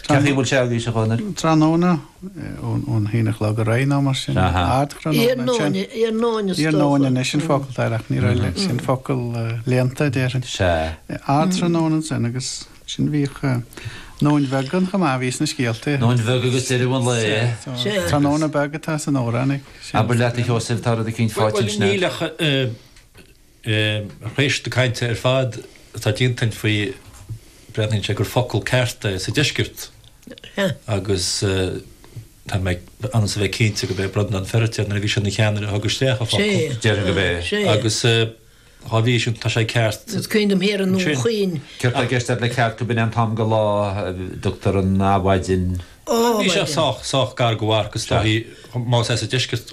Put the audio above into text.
Ceachaí, An bhfuil sé agaibhse a Chonaill? Tráthnóna, ón haon a chlog ar aghaidh nó mar sin. Ardthráthnóna. Iarnóin is dócha. Iarnóin anois an focal atá air ach ní raibh leis sin focal léannta déarfainn. Sea. Ardthráthnóna ansin agus sin bhíodh nóin bheag ann chomh maith a bhí sna scéalta. Nóin bheag agus deireadh an lae. Sea. Tráthnóna beag atá san amhrán ag. Abair leat a Sheosaimh tá rud eicínt fáighte ansin a'd. Níl ach. Tar éis na cainte ar fad atá déanta againn faoi, breathnaíonn sé gur focal ceart é sa deisceart agus tá mé ionann is a bheith cinnte gurb é Breandán Feiritéar, nuair a bhí sé ina cheannaire, a thug isteach an focal. Déarfainn gurb é agus dhá bhrí sin tá sé ceart. Is cuimhin liom thiar i nDún Chaoin. Céard tá i gceist a'd le ceart, go b'in é an t-am de lá a dtugtar an Adhmhaidin? Bhí sé sách, sách gar go bharr agus tá sí, más ea sa deisceart,